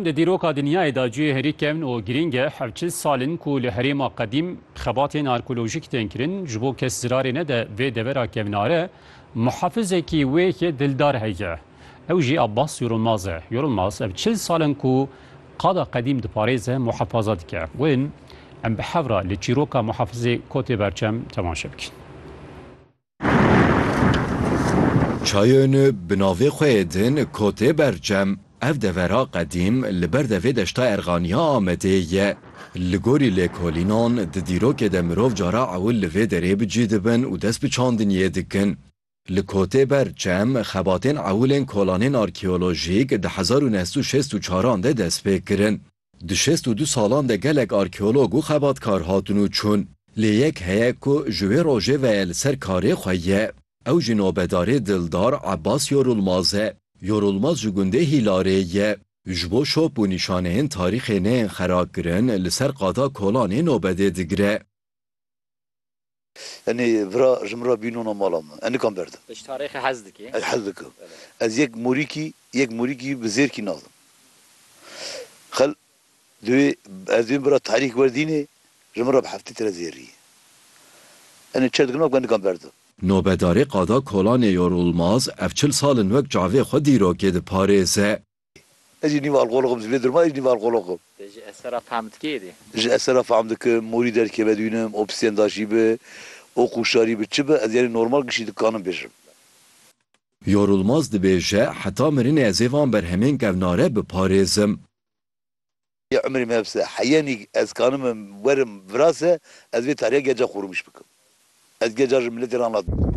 Di dîroka dinyayê de cihê herî kevn û girîng e. Ev çil sal in ku li herêma qedîm xebatên arkeolojîk tên kirin. Ji bo kes zirarê nede vê devera kevnare, muhafizekî wê yê dildar heye. Ew jî Abbas Yorulmaz e. Yorulmaz ev çil sal in ku qada qedîm diparêze, muhafaza dike. Wê em bi hev re li çîroka Muhafizê Kotê Berçem temaşe bikin. Çayên bi navê xwe yê din Kotê Bercem, ev devera qedîm li ber devê Deşta Erxanî ya Amedê ye. Li gorî lêkolînan di dîrokê de mirov cara ewil li vê derê bi cî dibin û dest bi çandiniyê dikin. Li Kotê Bercem xebatên ewilên kolanên arkeolojîk di hezar û neh sed û şêst û çaran de dest pê kirin. Di şêst û du salan de gelek arkeolog û xebatkar hatin û çûn. Lê yek heye ku ji wê rojê ve li ser karê xwe ye. Ew jî nobedarê dildar Ebas Yorulmaz e. Yorulmaz ji gundê Hîlarê ye. Ji bo şop û nîşaneyên tarîxê neyên xerakirin li ser qada Kolanê nobedê digire. Enê vira ji min re bî nona mala min. Ez nikan berdim. Tu ji tarêxê hez dikî? Ez hez dikim. Ez yek morîkî, yek morîkî bi zêrkî nadim. Xil, divê ez divê bira tarîx werdînê ji min re bi heftê tire zêrî ye. Enê çi dikim nakim ez nikan berdim. Nobedarê qada Kolanê Yorulmaz ev çil sal in wek çavê xwe dîrokê diparêze. Ez jî nîv alqolog im, ji vê durma ez jî nîv alqolog im. Te ji eser re fehm dikê êdî? Ji eser re fehm dikim, morî derkeve dûnim, opsîjen daşî bi, ok û şarî bi, çi bi, ez yanî normal gişî dikanim bêjim. Yorulmaz dibêje, Heta mirinê ez ê van berhemên kevnare biparêzim. Yê umrê me hepse e. Heyenî ez kanim werim virase ez vê tariya geca xwe rûmiş bikim. Ez geca ji miletê re anlat bikim.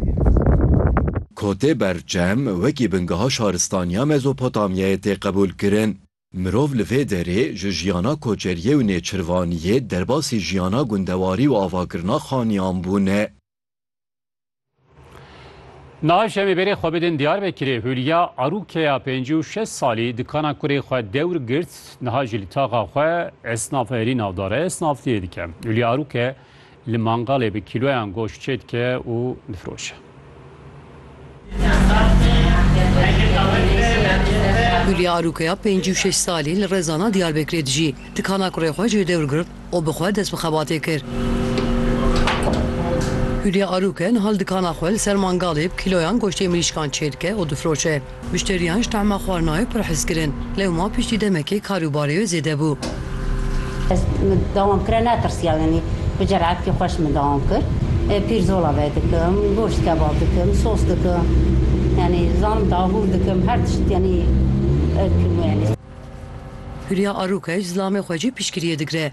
Kotê berçem wekî bingeha şaristaniya Mezopotamyayê tê qebûlkirin. Mirov li vê derê ji jiyana koçeriyê û nêçirvaniyê derbasî jiyana gundewarî û avakirina xaniyan bûne. Niha şemê berê xwe bidin Diyarbekirê Hûlya Arûkeya pêncî û şeş salî dikana kurê xwe dewr girt niha jî li taxa xwe esnaf herî navdar e esnafliyê dike. Hûlya Arûke li mangalê bi kîloyan goşt çêdike û difiroşe. Hûlya Arûkeya pêncî û şeş salî li Rezana Diyarbekirê dijî. Dikana kurê xwe jê dewr girt û bi xwe dest bi xebatê kir. Hûlya Arûke niha li dikana xwe li ser mangalê bi kîloyan goştê mirîşkan çêdike û difiroşe. Muşteriyan ji tahma xwarinayê pir hez kirin. Lewma piştî demekê kar û barê wê zêde bû. Ez min dawam kira netirsiya yanî bi ceretkî xweş min dawam kir. Pîrzola ve dikim, goşt kebab dikim, sos dikim. Yanî dizanim dabûr dikim her tişt yanî dikim yanî. Hûrya Arûkej zilamê xwe jî piştgiriyê digire.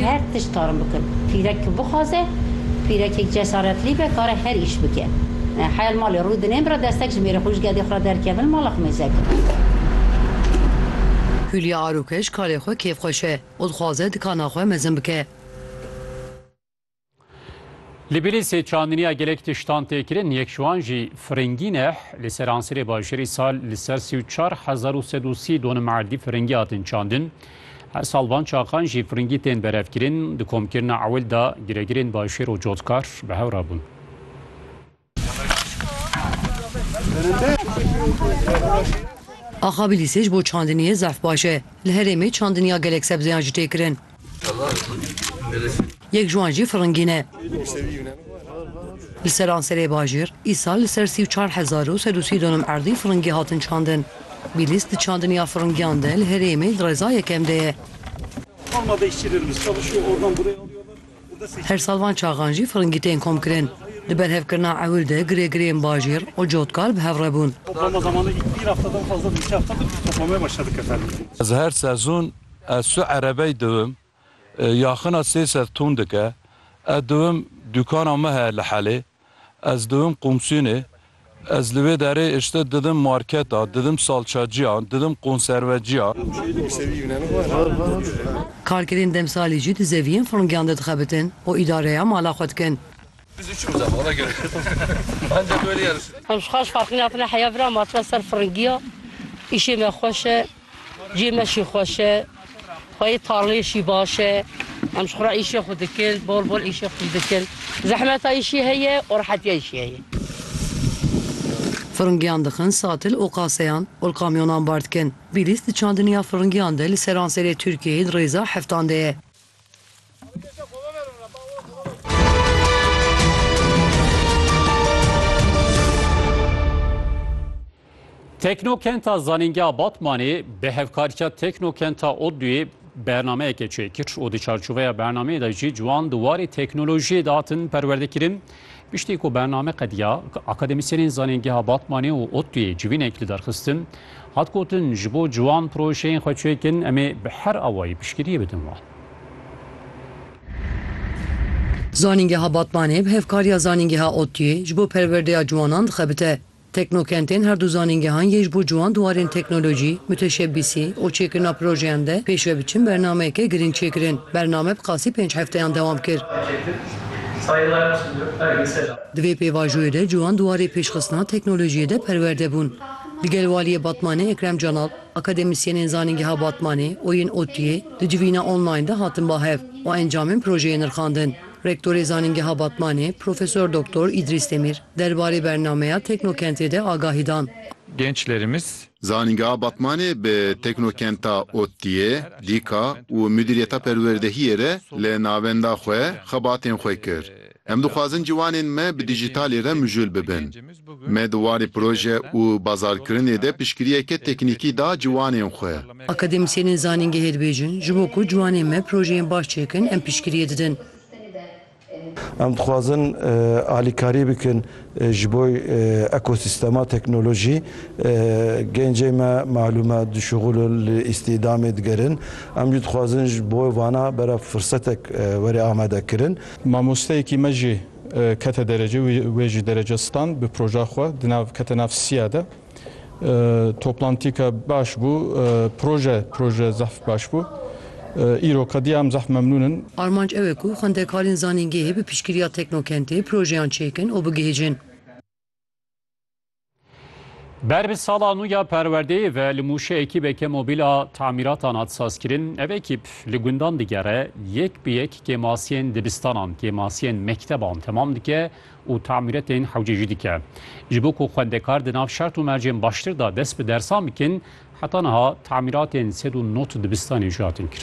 Her tişt karin bikin. Pîrek ku bixwaze, pîrekek cesaretlî be kare her îş bike. Heya li malê rû dinên bira destek ji mêrê xwe û ji gedê xwe re derkevin li mala xwe mêzekin. Hûlya arokej karê xwe kêfxweş e û dixwaze dikana xwe mezin bike. Li Bîlîsê çandiniya gelek tiştan tê kirin, yek ji wan jî firingî ne. Li seransirê bajêrî sal li ser sî û çar hezar û sed û sî donum erdî firingî hatin çandin. Her sal van çaxan jî firingî tên berevkirin. Di komkirina ewil de giregirên bajêr û cotkar bi hev re bûn. Axabilîsê ji bo çandiniyê zerf baş e. Li herêmê çandiniya gelek sebzeyan jî tê kirin. Yek ji wan jî firingîn e. Li seranserê bajêr îsal li ser sî û çar hezar û sed û sî donim erdî firingî hatin çandin. Bîlîs di çandiniya firingiyan de li herêmê di rêza yekem de ye. Her sal van çaxan jî firingî tên komkirin. Di berhevkirina ewil de girêgirêyên bajêr û cotkar bi hev re bûn. Ez her sezon ez su erebey diwim, yaxina sê sed tûn dike. Ez diwim dukana me heye li Helê. Ez diwim qomsînê, ez li wê derê îşte didim marketa, didim salçacîya, didim konservecîya. Karkerên demsalî jî di zeviyên furngîyan de dixebitin û îdareya mala xwe dikin. Em ji xwe ji farqî nakin a heya vira ma tune ser furngîya, îşê me xweş e. Cî me şî xweş e, xweyê tarleyê şî baş e. Em ji xwe re îşê xwe dikin, bol bol îşê xwe dikin. Zehmeta îşî heye û rehetiya îşî heye. Firingiyan dixin satil û qaseyan û li kamyonan bar dikin. Bîlîs di çandiniya firingiyan de li seranserê Tirkiyeyê di rêza heftan de ye. Teknokenta Zanîngeha Batmanê bi hevkariya Teknokenta ODTÜ'yê bernameyeke çêkir û di çarçoveya bernameyê de jî ciwan di warê teknolojiyê de hatin perwerdekirin. Piştî ku bername qediya, akademîsyenên Zanîngeha Batmanê û ODTU'yê civînek li derxistin, hat gotin ji bo ciwan projeyên xwe çêkin em ê bi her awayî piştgiriyê bidin wan. Zanîngeha Batmanê bi hevkariya Zanîngeha ODTU'yê ji bo perwerdeya ciwanan dixebite. Teknokentên her du zanîngehan yê ji bo ciwan di warên teknolojî, mûteşebbîsî û çêkirina projeyan de pêş ve biçin bernameyeke girîng çêkirin. Bername bi qasî pênc hefteyan dewam kir. Di vê pêvajoyê de ciwan di warê pêşxistina teknolojiyê de perwerde bûn. Li gel Waliyê Batmanê Ekrem Canal, akademîsyenên Zanîngeha Batmanê û yên ODTU'yê di civîna online de hatin ba hev û encamên projeyê nirxandin. Rektorê Zanîngeha Batmanê Profesor Doktor Îdrîs Demîr derbarê bernameya Teknokentê de agahî dan. Gençlerimiz. Zanîngeha Batmanê bi Teknokenta ODTU'yê, DKA, û Mudîriyeta Perwerdehiyê re li navenda xwe xebatên xwe kir. Em dixwazin ciwanên me bi dijîtalî re mijûl bibin. Me di warê proje û bazarkirinê de piştgiriyeke teknîkî da ciwanên xwe. Akademîsyenên zanîngehê dibêjin, ji bo ku ciwanên me projeyên baş çêkin em piştgiriyê didin. Em dixwazin alîkarî bikin ji bo ekosîstema teknolojî. Gencên me malûm e dişuxul in, li îstîdamê digerin. Em jî dixwazin ji bo vana berê firsetek were amadekirin. Mamosteyekî me jî kete derece û wê jî derece stand bi proja xwe di nav kete nav siya de. Toplantîka baş bû, proje proje zehf baş bû. Îro qedîya em zehf memnûn in. Armanc ew e ku xwendekarên zanîngehê bi piştgiriya teknokentê projeyan çêkin û bigihîjin. Ber bi sala nû ya perwerdeyê ve li Mûşê ekîbeke mobîl a tamîratan hat sazkirin. Ev ekîb li gundan digere, yek bi yek kêmasiyên dibistanan, kêmasiyên mekteban temam dike û tamîretên hewce jî dike. Ji bo ku xwendekar di nav şert û mercên baştir de dest bi dersan bikin, heta niha tamîratên sed û nod dibistanê jî hatin kirin.